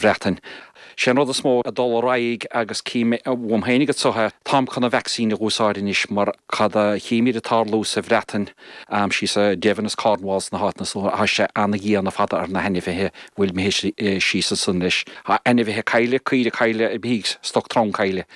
Bhreatain. Sé an rud is mó ag dul ar aghaidh, agus cím uaim féin agat so, táim chun an vacsaín a dh'úsáid anois, mar cad a chímíd ag tarlú sa Bhreatain, síos i Devon is Cornwall is na háiteanna so, tá sé ana-dhian ar fad ar na hainmhithe a bhfuil mé síos ansan leis. Tá ainmhithe cailleadh, caoire cailleadh i bhfíth, stoc trom cailleadh.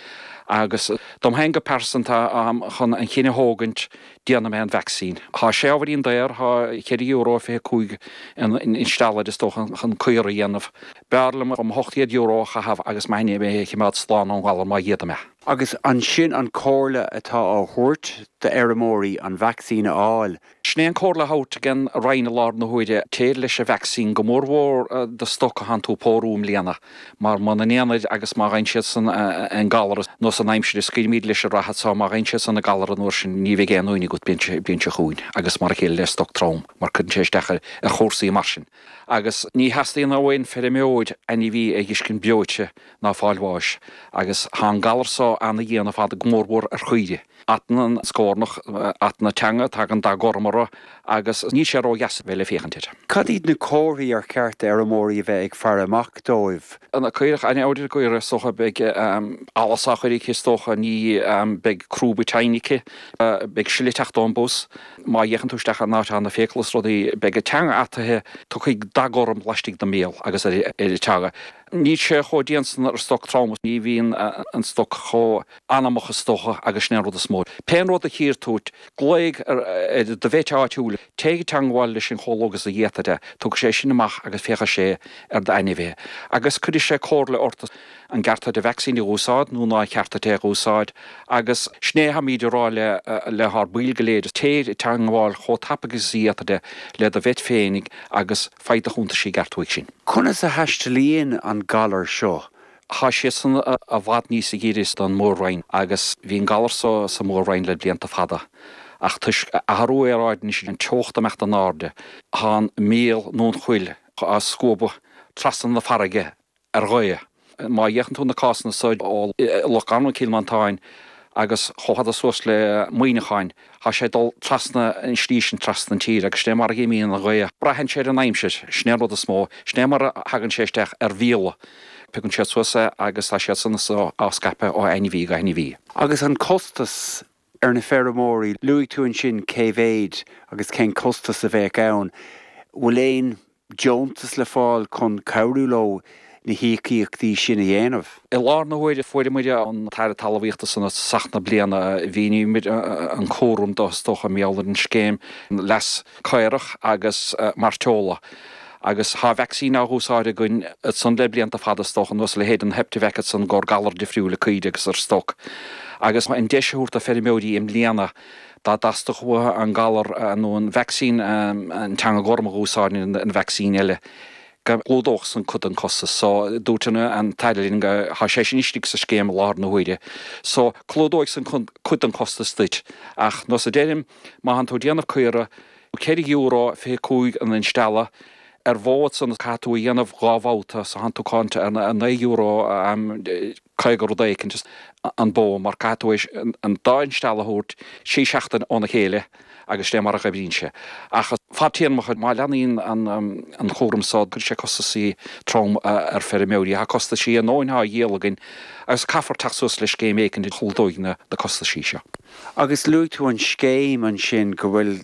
Agus dom féin go pearsanta, táim chun an cinneadh a thógaint déanfaidh mé an vacsaín. Tá sé ábhairín daor, tá ceithre euro fiche cúig an instealladh is dócha chun caora a dhéanamh. B'fhearr liom mo hocht chéad euro a chaitheamh agus m'ainmhithe a chimeád slán ón ngalar má dh'fhéadaim é. Agus ansin an comhairle atá á thabhairt d'fheirmeoirí an vacsaín a fháil. Sin é an comhairle á thabhairt ag an Roinn i láthair na huaire, téir leis an vacsaín, go mór mhór do stoc a thánn tú ag pórú i mbliana. mar muna ndéanfaid agus má dh'fhaigheann siad san an galar nó san aimsir a scaoilimíd leis an reithe so má dh'fhaigheann siad san an galar an uair sin ní bheidh aon uain agat bliain seo chugainn agus mar a chéile le stoc trom mar cuireann sé isteach ar chúrsaí mar sin agus ní theastaíonn ó aon feirmeoir ainmhí a dh'fhiscint breoite ná ag fáil bháis agus thá an galar so ana dhian ar fad go mór mhór ar chaoirigh. Atann an scornach, atann a teanga, tagann dath gorm orthu agus níl sé ródheas a bheith le féachaint air. Cad iad na comharthaí ar cheart d'fheirmeoirí a bheith ag faire amach dóibh? An caorach aineoil go háirithe, is dócha. Beidh allas á chur aici, is dócha. Nó beidh crúba teinne aici. Beidh sileadh ag teacht ón bpus. Má fhéachann tú isteach in áit atá na fiacla is rudaí, beidh a teanga ataithe, tiocfaidh dath gorm laistigh den mbéal agus ar a teanga. Níl sé chomh dian san ar stoc trom ach, ní bhíonn an stoc chomh anamach is dócha agus sin é an rud is mó. Pé rud a chíonn tú, glaoigh ar do vet áitiúil, téigh i dteangmháil leis chomh luath agus a dh'fhéadfaidh tú, tiocfaidh sé sin amach agus féachfaidh sé ar d'ainmhithe. Agus cuirfidh sé comhairle ort as an gceart duit a vacsaín a úsáid nó ná ceart duit é a úsáid. Agus sin é thámíd ag rá le hár baill go léir, téigh i dteangmháil chomh tapaidh agus a dh'fhéadfaidh tú le do vet féinig agus faigh do chuntas i gceart uaidh sin. Conas a thaistealaíonn an galar seo? Tá Sasana i bhfad níos giorra don Mhór-Roinn, agus bhí an galar so sa Mhór-Roinn le blianta fada, ach toisc athrú aeráide anois, an teocht ag imeacht in airde, tá an míol nó an chuil á scuabadh trasna na farraige ar ghaoth. Má fhéachann tú na cásanna so ó Loch Garman, Cill Mhantáin agus chomh fada suas le Muineachán, tá sé ag dul trasna an slí sin, trasna an tíre, agus sin é mar a dh'imíonn an ghaoth. Braitheann sé ar an aimsir, sin é an rud is mó. Sin é mar a thagann sé isteach ar mhíola. Piocann siad suas é agus tá siad san so á scaipeadh ó ainmhí go hainmhí. Agus an costas ar na feirmeoirí. Luaigh tú ansin cé mhéid agus cén costas a bheadh ann. Bhfuil aon deontas le fáil chun cabhrú leo na híocaíochtaí sin a dhéanamh? I láthair na huaire fuaireamar an tAire Talmhaíochta ansan tosach na bliana. Mhíníomar an cúram dó, is dócha, i mBéarla, an Scéim Leas. caorach agus mairteola, agus tá vacsaín á úsáid againn san le blianta fada is dócha, nós a leithéid an Heptavac ansan i gcomhair galair difriúla caoirigh agus ar stoc. Agus an deis a thabhairt do feirmeoirí i mbliana, dá dteastódh uathu an galar nó an vacsaín an teanga gorm a dh'úsáid nó an vacsaín eile, go gclúdódh san cuid den costas so. Dúirt an tAire linn tá sé sin istigh sa scéim i láthair na huaire so clúdóidh san cuid den chostas duit. Ach, nós a deirim, Má thánn tú ag déanamh caora, ceithre euro fiche cúig an instealladh, ar bharr san caithfidh tú é a dhéanamh dhá bhabhta so tánn tú ag caint ar na naoi euro aim caoga rud éicint is an bó mar caithfidh tú an dá instealladh a thabhairt trí sheachtain óna chéile agus sin é mar a dh'oibríonn sé. Ach fadtéarmacha má leanaíonn an cúram so cuirfidh sé costasaí trom ar feirmeoirí. Tá costaisí ár ndóthain á dhíol againn agus caithfear teacht suas le scéim éicint a chlúdóidh na costaisí seo. Agus luaigh tú an scéim ansin, go bhfuil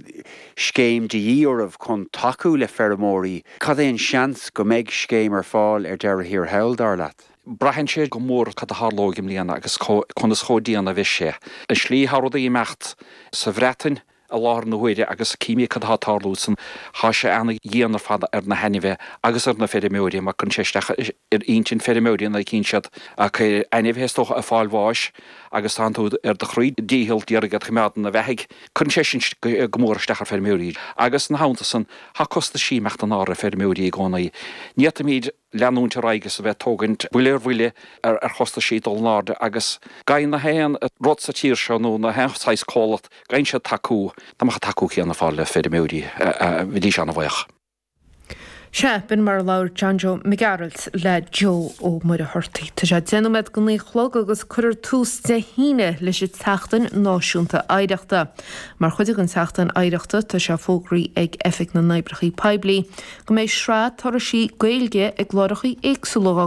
scéim de dhíth oraibh chun tacú le feirmeoirí. Cad é an seans go mbeidh scéim ar fáil ar deireadh thiar thall, dar leat? Braitheann sé go mór cad a tharlóidh i mbliana agus conas chomh dian a bheidh sé. An tslí atá rudaí ag imeacht sa Bhreatain i láthair na huaire agus címid cad atá ag tarlú ansan, tá sé ana-dhian ar fad ar na hainmhithe agus ar na feirmeoirí mar cuireann sé isteach. ar intinn feirmeoirí nuair a chíonn siad a gcuid ainmhithe is dócha ag fáil bháis agus tánn tú ar do chroí díchill d'iarraidh iad a choimeád ina bheathaidh. Cuireann sé sin go mór isteach ar feirmeoirí agus ina theannta san tá costaisí ag imeacht in airde ar feirmeoirí i gcónaí. Ní fhéadfaimid leanúint ar aghaidh is a bheith ag tógaint buille ar bhuille ar chostaisí ag dul in airde agus faigheann nach aon rud sa tír seo nó nach aon saghas comhlacht faigheann siad tacú, dá mbeadh an tacú céanna ar fáil le feirmeoirí bheidís ana-bhaoch. Sea, b'in mar a labhair John Joe Mac Gearailt le Joe Ó Muircheartaigh. Tá sé deich nóiméad go naoi a chlog agus cuirfear tús Dé hAoine leis an tSeachtain Náisiúnta Oidhreachta. Mar chuid den tSeachtain Oidhreachta tá sé fógraí ag Oifig na nOibreacha Poiblí go mbeidh sraith turaisí Gaeilge ag láithreacha éagsúla